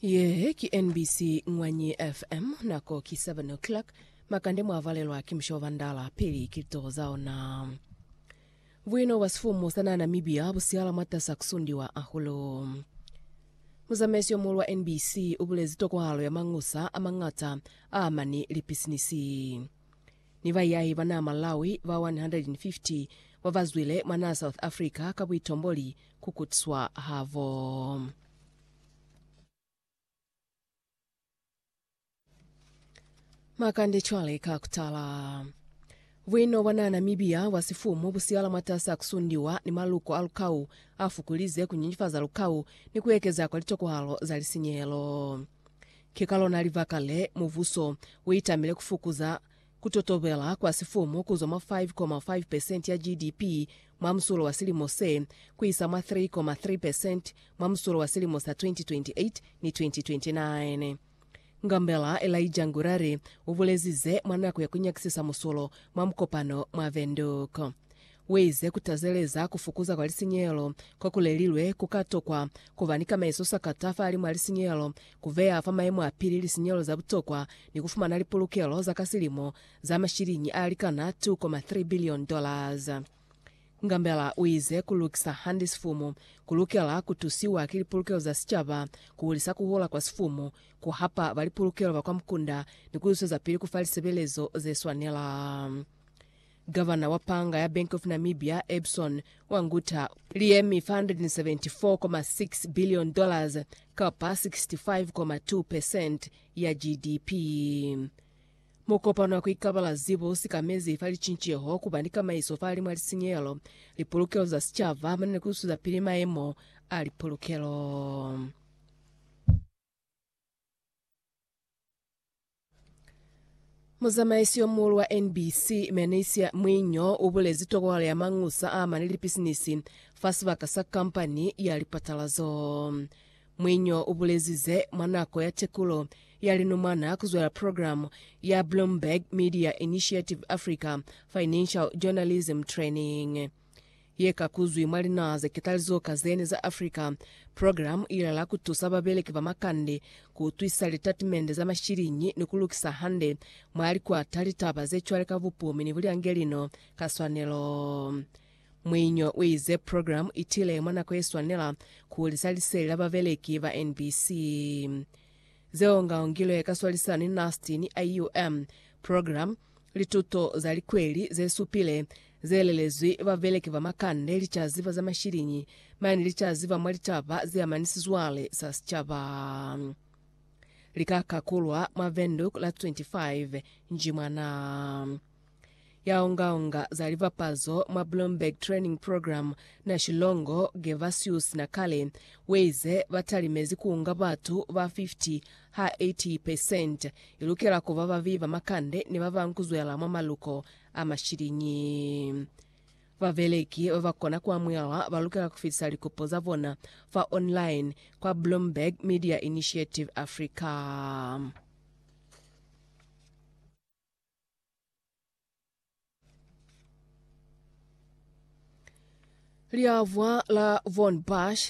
Ye ki NBC Ngwanyi FM, nako ki 7 o'clock. Makande mwa valelwa ki musha wa Bandala pili ki litoho za ona. Buino bwa sifumu sa naha Namibia bu sihala mwatasa kusundiwa hahulu. Muzamaisi yo muhulu wa NBC u bulezi tokwahalo ya mangusa a mañata a amani lipisinisi. ni bayahi ba naa Malawi ba 150 ba ba zwile mwa naa South Africa ka buitomboli ku kutswa habo. Makande cwale ka kutala. Buino bwa naa Namibia bwa sifumu bu siyala mwatasi a ku sundiwa ni maluko a lukau a fukulize ku nyenyefaza lukau ni ku ekeza kwa litokohalo za lisinyehelo. Ki ka lona libaka le, mubuso u itamile ku fukuza ku totobela kwa sifumu ku zwa mwa 5.5 percent ya GDP mwa musulo wa silimo se, ku isa mwa 3.3 percent mwa musulo wa silimo sa 2028 ni 2029. Ngambela Elijah Ngurare u bulezi ze mwa nako ya ku nyakisisa musulo mwa mukopano mwa Windhoek. Waize kutazeleza kufukuza kwa lisinyehelo kokulelilwe kuka tokwa kuba ni kamaiso sakata fahali mwa lisinyehelo, kubeya fa maimo apili lisinyehelo za butokwa, ni kufumana lipulukelo za ka silimo za mashiliñi alikana K2.3 bilioni. Ngambela uize kulukisa hande sifumu kulukela kutusiwa ki lipulukelo za sicaba, kuhulisa kuhula kwa sifumu, kuhapa balipulukelo ba kwa mukunda ni kuiswezapili kufa lisebelezo zeswanela. Gavana wa panga ya Bank of Namibia, Ebson wa Ngutha, li yemi 474.6 billion dollars kapa 65.2 percent ya GDP. Mukopano wa ku ikabala zibo u sikamezi fa licinceho ku ba ni kamaiso fa limwa lisinyehelo, lipolokelo za sicaba hamano ni ku zwezapili maemo a lipolokelo. Muzamaisi yo muulu wa NBC, Menesia Mwinyo, u bulezi tokohalo ya mangusa a mane lipisinisi fa sibaka sa kampani ya lipatalazo. Mwinyo u bulezize mwa nako ya tekulo ya linumwana ku zwela programu ya Bloomberg Media Initiative Africa Financial Journalism Training. ye ka kuzwi mwa linaha ze ketalizo ka zene za Africa. Programu ila la ku tusa babeleki ba makande ku utwisisa litatimende za mashiliñi ni ku lukisa hande mwa likwata litaba ze cwale ka bupumi ni bulyangelino ka swanelo. Muinyo u ize programu i tile mwa nako ye swanela ku hulisa liseli la babeleki ba NBC. Ze ongaongilwe ka swalisano ni NAST ni IUM, programu Lituto za likweli ze supile ze lelezwi babeleki ba makande licazi ba za mashiliñi mane licazi ba mwa litaba ze amani sizwale sa sicaba li ka kakulwa mwa Windhoek la 25 Njimwana. Ya onga-onga za libapazo mwa Bloomberg Training Program na Shilongo, Gervasius Nakale, weize ba talimezi ku unga batu ba 50 Ha 80 percent i lukela ku ba babi ba makande ni ba ba nkuzwela mwa maluko a mashiliñi. Babeleki ba ba kona ku amuhelwa ba lukela ku fitisa likopo za bona fa online kwa Bloomberg Media Initiative Africa. Liavwa la Von Bush,